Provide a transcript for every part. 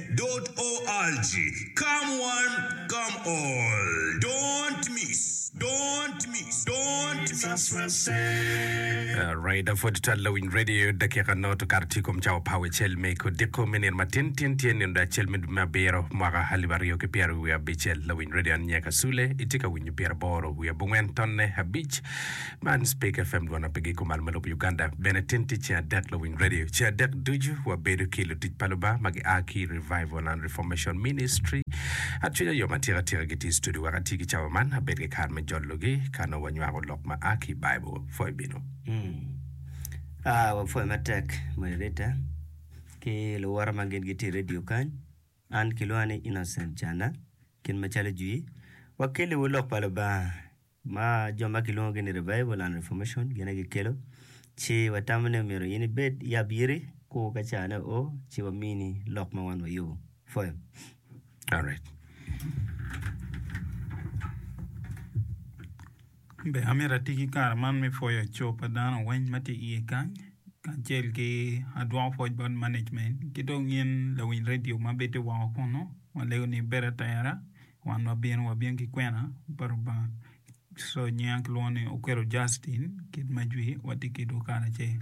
www.org Come one, come all, don't miss, don't miss, don't miss. Us will say. Alright, apud twal lawiny radio dakika nongo to kato tye kom cawa pa wecel me kodiko me nino matin tin tye nino da acel me dwe me abiro mwaka alip aryo ki pyero wiye abicel lawiny radio an Nyeka Sule itye ka winyo pyeraboro wiye abongwen tonne abic Man Speak FM gwok na pigi kumal ma lub Uganda bene tin tye ceng adek luwiny radio ceng adek ducu wa bedo ki lutic pa Lubanga ma gi aa ki Revival and Reformation Ministry acwinya yom atika atika gi tye studio wek ati ki cawa man abed ki kare me jolo gi ka nongo wa nywako lok ma aa ki Bible pwoyo bino. A wa pwoyo ma tek Moderator ki luwote ma gin gi tye i radio kany an ki lwonga ni Innocent Cana kit ma calo jwi wa keli wu lok pa Lubanga ma jo ma kilwongogi ni Revival and Reformation gin aye gikelo, ci watamo ni myero in ibed i abiri ku ka carane oo ci wamini lok ma wan wayubo. Ipwoyo? Alright. An bene amito ati ki kare man me pwoyo co pa dano weng ma tye iye kany, kacel ki adwoko pwoc bot management ki dong in lawiny redio ma bito woko kunu, ma alego ni bedo atera. Wan wabino wabin ki kwena pa Lubanga. So nyinga kilwongo ni Okwelo Justin, kit ma jwi watye ki dwe karacel.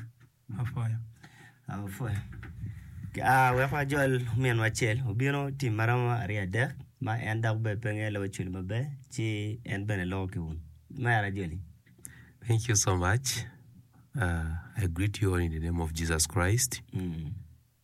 Apuya. Apuya. Ah, wek wajol ominwa acel. Obino tim ma romo aryo adek, ma en dok bene pe ngeyo loko cwil maber, ci en bene loko ki un. Mer ajoli. Thank you so much. Uh, I greet you all in the name of Jesus Christ. Mm.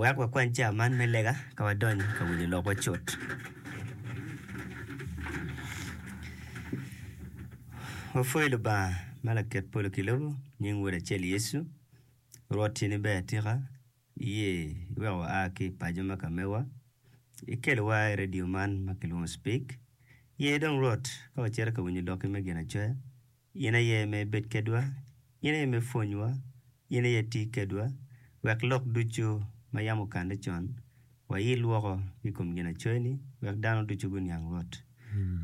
Wek wakwany cawa man me lega ka wadonyo i ka winyo lokwa cut. Wapwoyo Lubanga ma laket polo ki lobo, nying Wod acel Yecu. Rwot tye ni ber atika, iye iweko wa a ki i paco me ka mewa, ikelowa i redio man ma kilwongo cipik. Ye dong Rwot ka wacito ka winyo lokki me Ginacoya, In aye me ibed kedwa, in aye me ipwonywa, in aye iti kedwa, wek lok ducu ma yam okanne con wayil woko ki kom ginacoyoni, wek dano ducu guniang Rwot.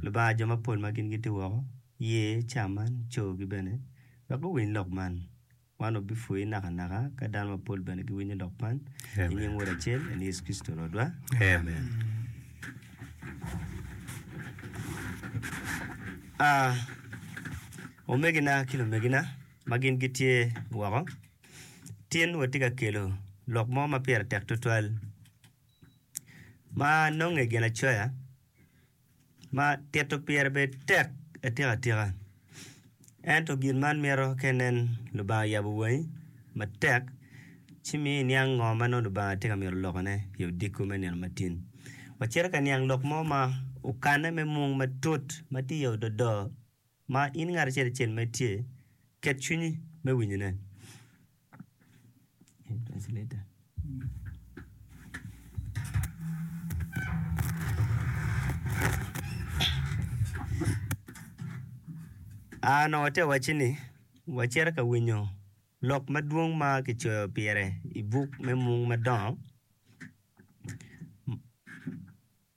Lubanga, jo mapol ma gin giti woko, ye ca man, cogi bene, wek guwiny lok man, Man obipwoyi nakanaka ka dano mapol bene giwinyo lok man. I nying Wod acel, en Yecu Kricito Rwotwa. Amen. Ah, omegina ki lumegina ma gin gitye woko, tin watye ka kelo lok mo ma pire tek tutwal ma nonge ginacoya ma tito pire bed tek atikatika. Ento gin man mito ka inen Lubanga oyabo wangi matek ci miyo iniang ngo ma nongo Lubanga tye ka mito lokone i odiko me nino matin. Waciti ka niang lok mo ma okanne me mung matut ma tye i ododo. Ma in ngat acel acel ma itye, ket cwinyi me winyone. A Nongo ate wacci ni, wacito ka winyo lok madwong ma kicoyo pire i buk me Mung Madongo.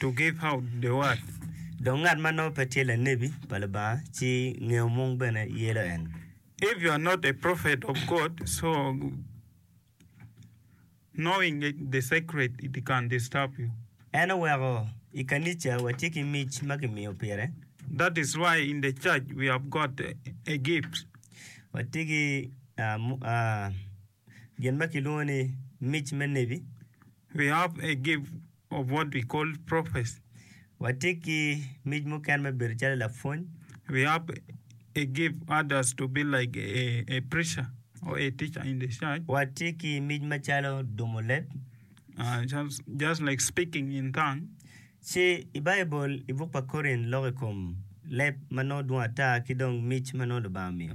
to give out the word. Dong ngat ma nongo pe tye lanebi pa Lubanga ci ngeyo mung bene yelo en. If you are not a prophet of God, so knowing the secret it can disturb you. En oweko i kanica watye ki mic ma kimiyo pire. That is why in the church we have got a, a gift. Watye ki ah, mu- ah, gin ma kilwongo ni mic me nebi. We hope a gift of what we call prophecy. Watye ki mic mukene me bedo calo lapwony. We hope a gift others to be like a, a preacher or a teacher in the church. Watye ki mic macalo dumo leb. Uh, just, just like speaking in tongue. Ci i Baibul, i buk pa Korin, loko i kom leb ma nongo dwong ata ki dong mic ma nongo Lubanga omiyo.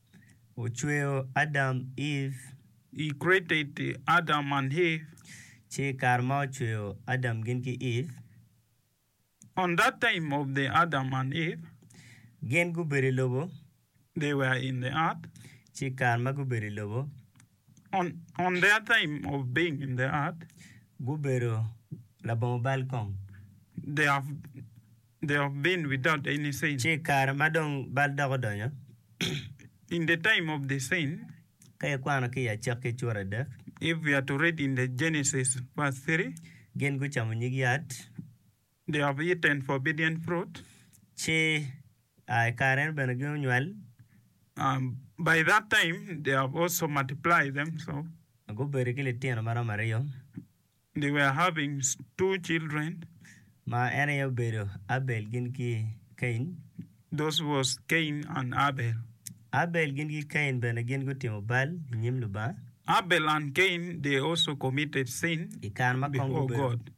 ocweyo Adam, Eve. He created Adam and Eve. Ci i kare ma ocweyo Adam gin ki Eve. On that time of the Adam and Eve. Gin gubedo i lobo. They were in the earth. Ci i kare ma gubedo i lobo. On their time of being in the earth, gubedo labongo bal kong. they have, they have been without any sin. Ci i kare ma dong bal dok odonyo, In the time of the sin, ka ikwano ki i Acakki cura adek, if we are to read in the Genesis verse 3, gin gucamo nyig yat, The of eat and forbidden fruit. Ci I kare eno bene gunywal. By that time they have also multiplied themselves. Gubedo ki litino ma romo aryo. They were having two children. Ma en aye obedo Abel gin ki Cain. Those was Cain and Abel. Abel gin ki Cain bene gin gutimo bal i nyim Lubanga. Abel and Cain they also committed sin before God.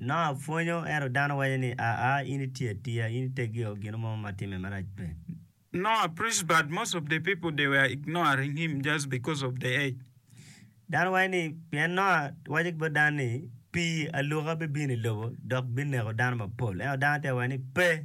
Noah pwonyo, ento dano waco ni, Aa, in iti atiya, in itegio, gin mo ma timme marac pe. Dano waco ni, Pien Noah waco ki bot dano ni, Pii aluka bibino i lobo dok bineko dano mapol. Ento dano te waco ni, Pe!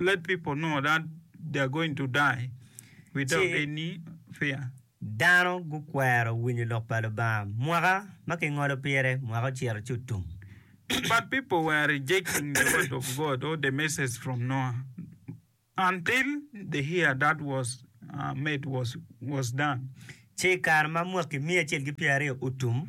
Let people know that they are going to die without Ci- any fear. Dano gukwero winyo lok pa Lubanga. Mwaka ma kingolo pire, mwaka ocito ci otum. But people were rejecting the word of God or the message from Noah until the year that was uh, made was was done. Ci i kare ma mwaki miya acel ki pyeraryo otum,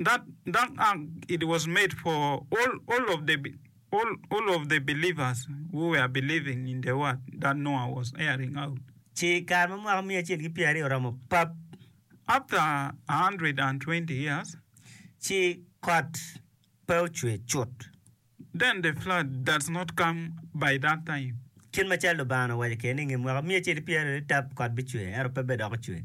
That that ark it was made for all all of the all all of the believers who were believing in the word that Noah was airing out. Ci i kare ma mwaka miya acel ki pyer aryo oromo pap. After a hundred and twenty years. Ci kot pe ocwe cut. Then the flood does not come by that time. Kit macalo Lubanga owaco kene ni i nge mwaka miya acel ki pyer aryo ni tap kot bicwe, ento pe bedok ocwe.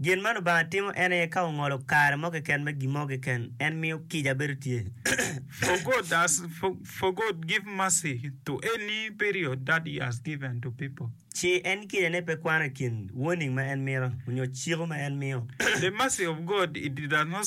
Gin ma Lubanga timo en aye ka ongolo kare mo keken me gin mo keken, en miyo kica bedo tye. For God has for God give mercy to any period that he has given to people. Ci en kica ne pe kwano i kin warning ma en mito onyo ciko ma en miyo. The mercy of God it does not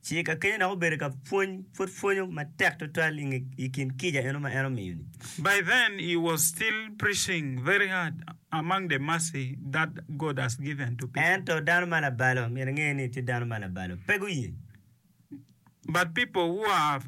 Ci ka kenyo dok obedo ka pwony, pud pwonyo matek twatwal i nge i kin kica eno ma en omiyo-ni. By then he was still preaching very hard among the mercy that God has given to people. Ento dano ma labalo, myero inge ni tye dano ma labalo, pe guye. But people who have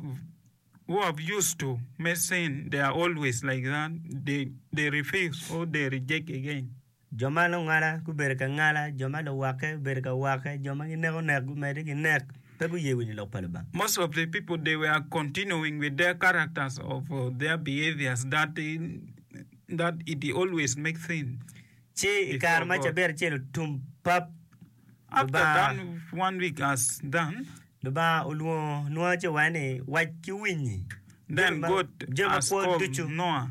who have used to me sin, they are always like that, they they refuse or they reject again. Jo ma lungala gubedo ka ngala, jo ma luwakke gubedo ka wakke, jo ma gineko nek gumedde ki nek, pe guye winyo lok pa Lubanga. Most of the people they were continuing with their characters of their behaviors that that it always make things. Ci i kare ma cabit acel otum pap, After done one week as done, Lubanga olwongo Nua ci owacce ni, Wac ki winyi then God has called Noah.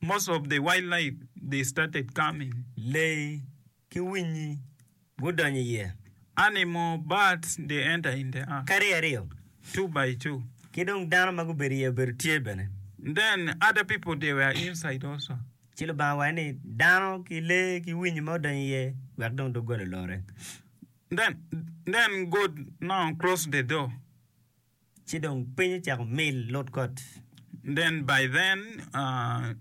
Most of the wildlife they started coming, lee ki winyi gudonyo iye. Animal, birds, they enter in the ark. Kadi aryo. Two by two. Ki dong dano ma gubedo iye obedo tye bene. Then other people they were inside also. Ci Lubanga owaco ni, Dano ki lee ki winyi ma odonyo iye, wek dong doggola olore. Then God now closed the door. Ci dong piny ocako mil lud kot. Then by then uh,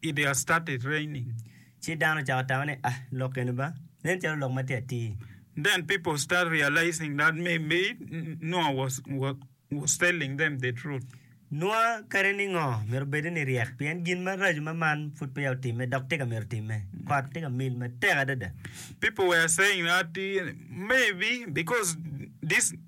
it has started raining. Ci dano ocako tamo ni, Ah, lok eni ba, nen calo lok ma tye atir. Then people start realizing that maybe Noah was, was, was telling them the truth. Noa kadi ni ngo, myero obedde ni ryek, pien gin maraco ma man pud peya otimme, dok tika myero otimme? Kot tye ka mil matek adada. People were saying that maybe because this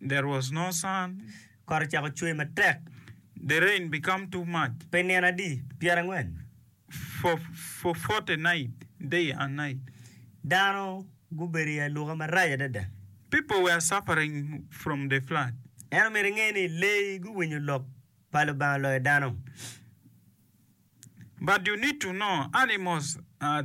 There was no sun. Kot ocako cwer matek. The rain became too much. Pe nino adi pyerangwen. For forty nights, day and night. Dano gubedo i aluka marac adada. People were suffering from the flood. En omyero inge ni leyi guwinyo lok pa Lubanga loyo dano. But you need to know animals are.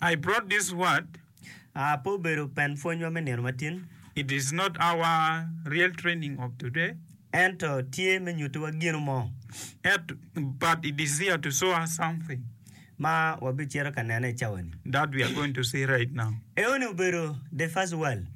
I brought this word. A Pe obedo pen pwonywa me nino matin. It is not our real training of today. Ento tye me nyutiwa gino mo. At, but it is here to show us something. Ma wabicito ka nene i cawani. That we are going to see right now. Eoni obedo the first world.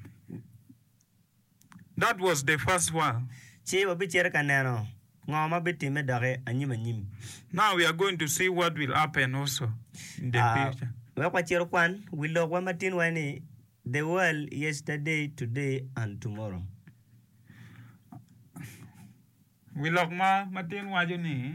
That was the first one. Ci wabicito ka neno ngo ma bitimme doki anyim anyim. Now we are going to see what will happen also in the future. Wek wacit okwan wi lokwa ma tin wai ni The World Yesterday, Today and Tomorrow. Wi lok ma ma tin waco ni.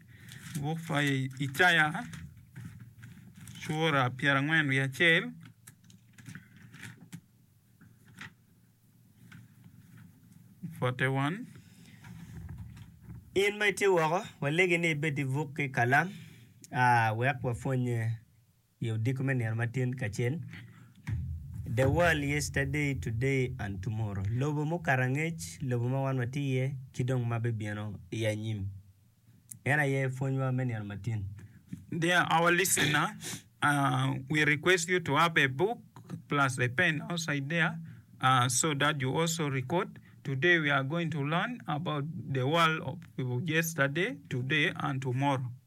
Buk pa Icaya cura pyerangwen wiye acel forty one. In ma itye woko, walegi ni ibed ki buk ki kalam wek wapwonnye. I odiko me nino matin kacel, The World Yesterday, Today, and Tomorrow, Lobo mukato angec, Lobo ma wan watye iye, ki dong ma bibino i anyim, en aye pwonywa me nino matin. Dear our listener, we request you to have a book plus a pen outside there so that you also record. Today we are going to learn about the world of yesterday, today and tomorrow.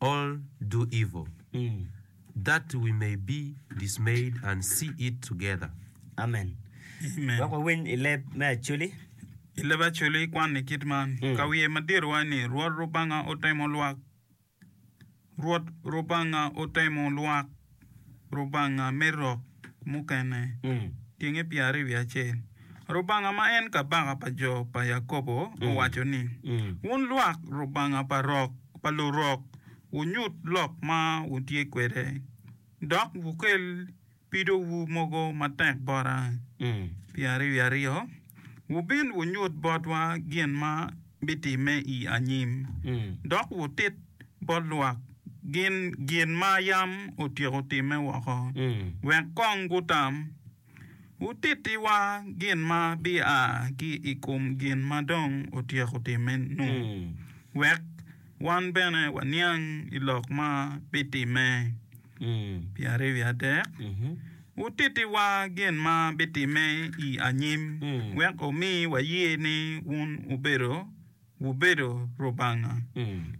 all do evil, that we may be dismayed and see it together. Amen. Wek wawiny i leb me Acholi. I leb Acholi ikwanni kit man, Ka wiye madit waco ni, Rwot Lubanga otemo lwak, Rwot Lubanga otemo lwak. Rubanga me rok mukene genge pyeraryo wiye acel. Rubanga ma en Kabaka pa jo pa Yakobo owaco ni, Wun lwak Rubanga pa rok pa lurok, wunyut lok ma wutye kwede, dok wukel pidowu mogo matek bota. Pyeraryo wiye aryo. Wubin wunyut botwa gin ma bitimme i anyim, dok wutit bot lwak gin gin ma yam otyeko timme woko, wek kong gutam. Wutittiwa gin ma bia ki i kom gin ma dong otyeko timme-nu, wek wan bene waniang i lok ma bitimme. Pi aryo i adek, wutittiwa gin ma bitimme i anyim, wek wumi waye ni wun wubedo wubedo Lubanga.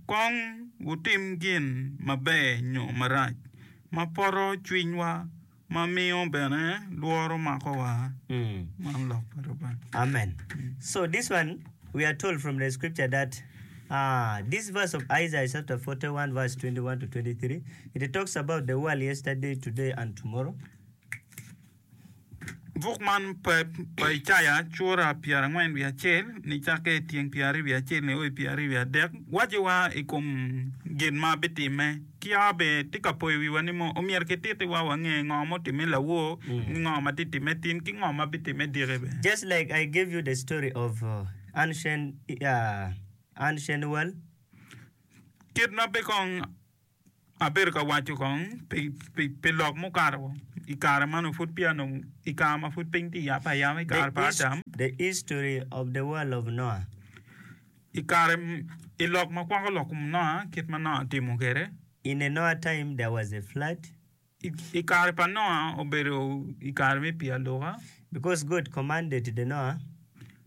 Kong wutim gin maber nyo marac, ma poto cwinywa, ma miyo bene lworo makowa. Man lok pa Lubanga. Amen. So this one we are told from the scripture that. This verse of Isaiah chapter 41 verse 21 to 23 it talks about the world yesterday, today and tomorrow. Buk man pe pa Icaya cura pyerangwen wiye acel nicakke i tyeng pyeraryo wiye acel nio i pyeraryo wiye adek waco wa i kom gin ma bitimme. Kiya be tye ka poyo wiwa ni mo omyero kititi wa wange ngo ma otimme lawor ki ngo ma tye timme tin ki ngo ma bitimme diki bene. Just like I gave you the story of. Ancenuel, Kit ma pe kong abedo ka waco kong pi lok mukato i kare ma nongo pud peya nongo i kare ma pud piny tye ka yabbe ayaba i kare pa Adam, i lok ma kwako lok kom Noah kit ma Noah otimo kwede. I kare pa Noah obedo i kare me pii aluka. Because God commanded the Noah.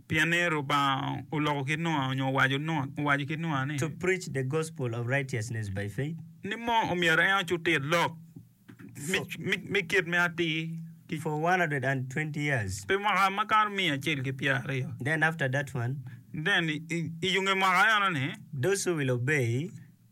Pienni Rubanga oloko ki Noah onyo owaco owaco ki Noah ni. To preach the gospel of righteousness by faith. Ni mo omyero en ocutir lok me kit me atir. For one hundred and twenty years. Pi mwaka makato miya acel ki pyer aryo. Then after that one. Then i yunge mwaka eno ni. Those who will obey.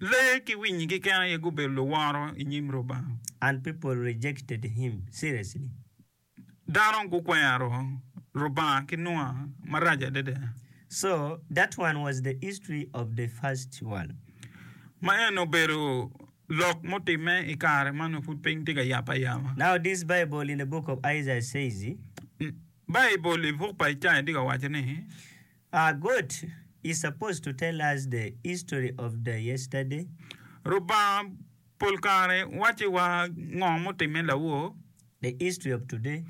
Lee ki winyi keken aye gubedo luworo i nyim Lubanga. And people rejected him, seriously. Dano gukwero Lubanga ki nua marac adada. So, that one was the history of the first world. Ma eni obedo lok mutimme i kare ma nongo pud piny tye ka yap ayaba. Now this Bible in the book of Isaiah says. Baibul i buk pa Icaya tye ka waco ni. Ah good you supposed to tell us the history of the yesterday. Lubanga pol kare wacci wa ngo mutimme lawor. The history of today.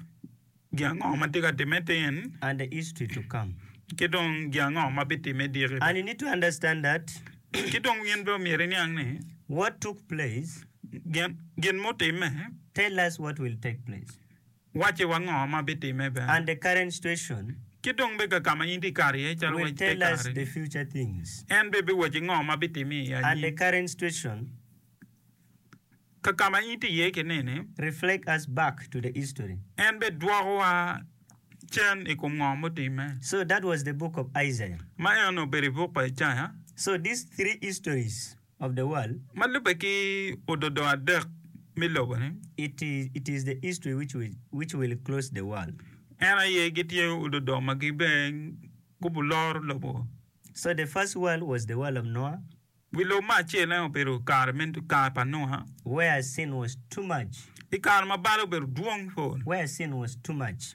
Gin ango ma tye ka timme tin. And the history to come. Ki dong gin ango ma bitimme diki. And you need to understand that. Ki dong in bene omyero iniang ni. What took place. Gin mutimme. Tell us what will take place. Wacci wa ngo ma bitime bene. And the current situation. Ki dong bega ka ma in ti kato iye calo waci te kare-ni. Will tell us the future things. En bene biwacci ngo ma bitime i anyim. And the current situation. Ka ka ma in ti iye ki nini. Reflect us back to the history. En bidwoko wa cen i kom ngo mutimme. So that was the book of Isaiah. Ma eno obedo i buk pa Icaya. So these three histories. of the world. Ma lubbe ki ododongo adek me lobo-ni. It is, it is the history which will, which will close the world. En aye gitye ododongo ma gibin gubuloro lobo. So the first world was the world of Noah. Wi lobo me acel en obedo kare me, kare pa Nua. Where sin was too much. I kare ma bal obedo dwong pol. Where sin was too much.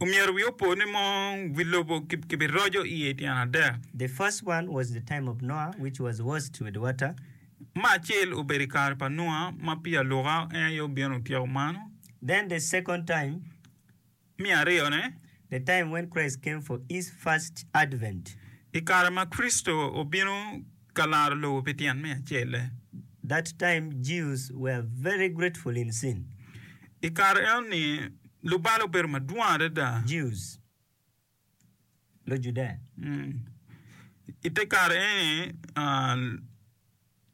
Omyero wi opo ni mong wi lobo kibiroco iye i tyen adek. The first one was the time of Noah which was washed with water. Ma acel obedo i kare pa Nua ma pi aluka en aye obino otyeko mano. Then the second time. Me aryo ne. The time when Christ came for his first advent. I kare ma Kricito obino Ka laro lobo pi tyen me acelle. That time Jews were very grateful in sin. I kare enoni lubalo obedo madwong adada. Jews, Lujudaya. Mm. I te kare eni ah,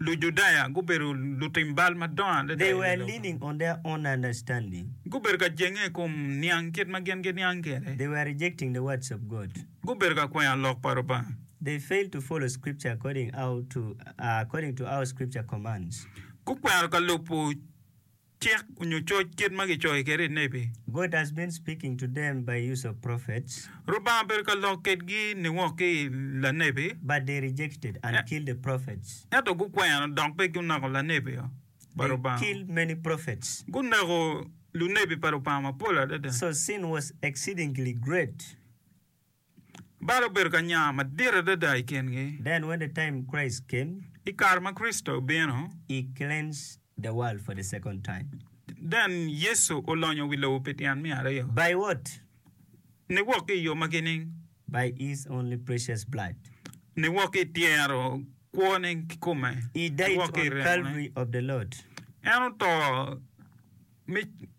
Lujudaya gubedo lutim bal madongo adada They i were lobo. leaning on their own understanding. Gubedo ka jenge i kom niang kit ma gin giniang kwede. They were rejecting the words of God. gubedo ka kwenyo lok pa Lubanga. They failed to follow Scripture according our to according to our Scripture commands. Gukwero ka lubo cik onyo coc kit ma gicoyo kwede i nebi. God has been speaking to them by use of prophets. Lubanga obedo ka lok kwedgi niwok ki i lanebi. But they rejected and killed the prophets. Ento gukwero dok pe guneko lanebi pa Lubanga. They killed many prophets. Guneko lunebi pa Lubanga mapol adada. So sin was exceedingly great. Bal obedo ka nya madit adada i kingi. Then when the time Christ came. I kare ma Kricito obino. He cleansed the world for the second time. Then Yecu olonyo wi lobo pi tyen me aryo. By what? Niwok ki i yo magi nining? By His only precious blood. Niwok ki i tyero kwone ki kome. He died on Calvary of the Lord. En oto me.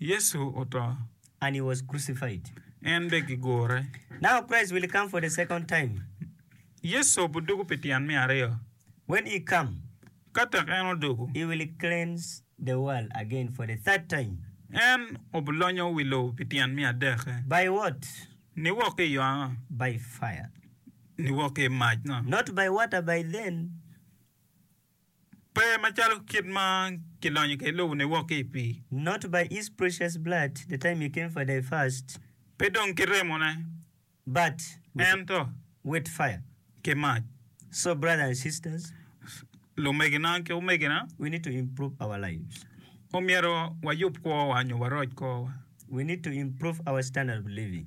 Yecu oto. And he was crucified. En bene gigure. Now Christ will come for the second time. Yecu obidugu pi tyen me aryo. When he come. Ka tek en odugu. He will cleanse the world again for the third time. En obilonyo wi lobo pi tyen me adek. By what? Niwok ki i yo ango? By fire. Niwok ki i mac no. Not by water by then. Pe macalo kit ma kilonyo kwede lobo ni wok ki i pii. Not by his precious blood, the time he came for thy first. Pe dong ki remone. But with, ento with fire. ki mac. So brother and sisters, Lumegina ki omegina, we need to improve our lives. omyero wayub kwowa nyo waroc kwowa. We need to improve our standard of living.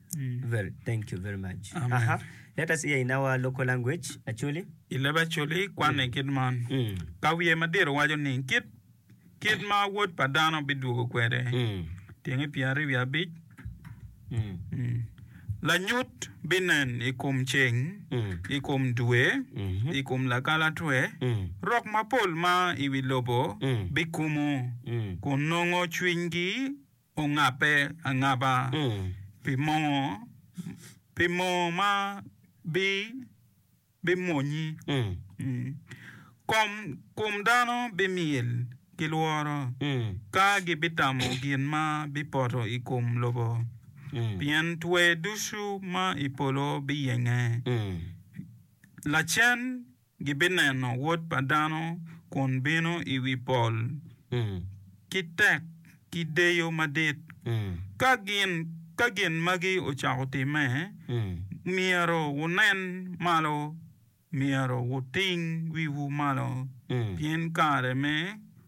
I leb Acholi, kwanne kit man, Ka wiye madit owaco ni, Kit ma Wod pa dano bidwogo kwede, tyenge pyeraryo wiye abic, lanyut binen i kom ceng, i kom dwe, i kom lakalatwe, rok mapol ma i wi lobo bikumo kun nongo cwinygi. ongabbe angaba pi moo, pi moo ma bimwonyi. Kom dano bimyel ki lworo ka gibitamo gin ma bipoto i kom lobo, pien twer ducu ma i polo biyenge lacen. gibineno Wod pa dano kun bino i wi pol ki tek ki deyo madit. Ka gin magi ocako timme, myero wunen malo, myero wuting wiwu malo, pien kare me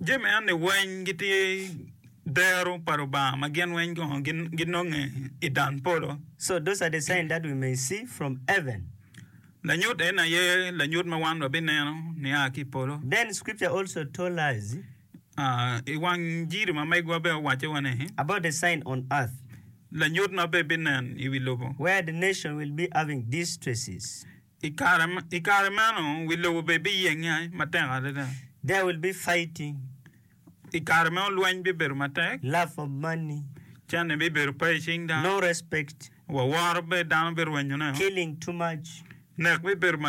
Jami enni weny gitye dero pa Lubanga ma gin weny kono ginonge i dan polo. So those are the sign that we may see from heaven. Lanyut eni aye lanyut ma wan wabineno nia ki i polo. Then scripture also told us. I wang jiri ma megwa bene owacce wa ni. About the sign on earth. Lanyut ma bebinen i wi lobo. Where the nation will be having distresses. I kare meno, wi lobo bene biyenge matek adada. There will be fighting. I kare meno, lweny bibedo matek. Love of money. Cente bibedo pe i cing dano. No respect. Waworo pe dano birwenyo ne. Killing too much. Nek bibedo madit.